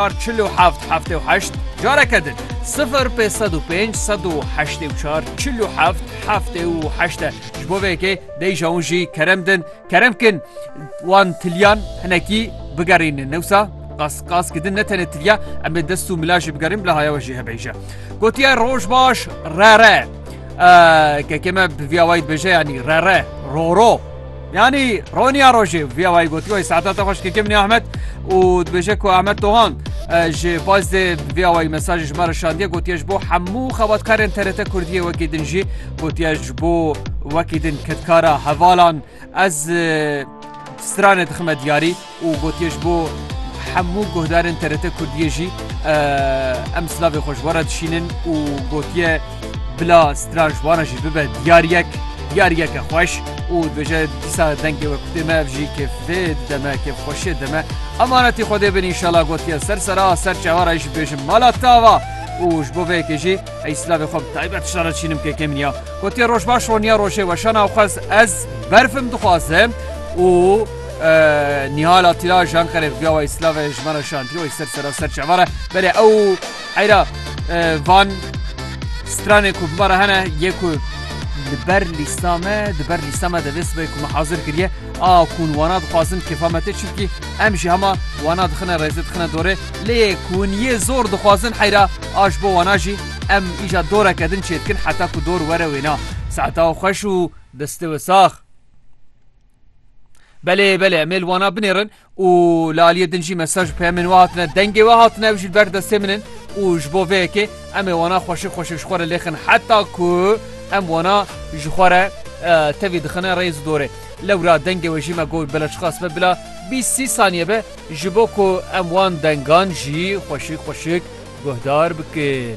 Ar çil û heft heftê û heşt Careke din sifir pê sed û pênc sed û heştê û çar çil û heft heftê û heşt e ji bo vê yekê dey ji wan jî kerem din kerem kin wan tilyan hinekî bigerînin ne wisa qas qas kidin ne tenê tilya em ê dest û mila jî bigerîn bila haya we jî hebe îje gotiye roj baş re re kekê me bi vîya wayî dibêje yanî re re roro Yanî roniya rojê viya wayî gotî wayî saeta te xweş ke kemnî Ahmet û dibêje ku Ahmet Tohan ji baz dê viya wayî mesajê ji me re şandiye gotiye ji bo hemû xebatkarên TRT Kurdiyê wekî din jî gotiye ji bo wekî din kedkara hevalan ez stranê dixime diyarî. û gotiye ji bo hemû guhdarên TRT Kurdiyê jî em silavê xwe ji we re dişînin û gotiye bila stra ji wan jî bibe diyariyek diyariyeke xweş û dibêje dîsa dengê we kutê me ev jî kêfê dide me kêfxweşiyê dide me emanetî Xwedê bin înşala gotiye ser sera ser çawa re jî dibêjim mala tava û ji bo vê yekê jî ey silavê xwe bi taybet tişta re dişînim kêkê min ya gotiye roj baş roniya rojê weşana xwez ez berfim dixwazim û Nihal Atila ji Anqerê viya wayî silav e ji me re şantiye wayî ser sera ser çava re berê ew eyra van stranê ku bi me re hene yê ku li ber lîsta me di ber lîsta me de vê sibê ku me hazir kiriye a kun wana dixwazin kêfa me tê çimkî em jî hema wana dixine rêzê dixine dorê lê yê kun yê zor dixwazin heyra a ji bo wana jî em îja doreke din çê dikin heta ku dor were wêna seheta xweş û destê we sax. Belê belê em ê li wana binêrin û li aliyê din jî mesaj û peyemên we hatine dengê we hatine ev jî li ber destê min in û ji bo vê yekê em ê wana xweşik xweşik ji xwe re lêxin heta ku em wana ji xwe re tevî dixine rêz û dorê lewra dengê we jî me got bila çiqas be bila bîst sî saniye be ji bo ku em wan dengan jî xweşik xweşik guhdar bikin.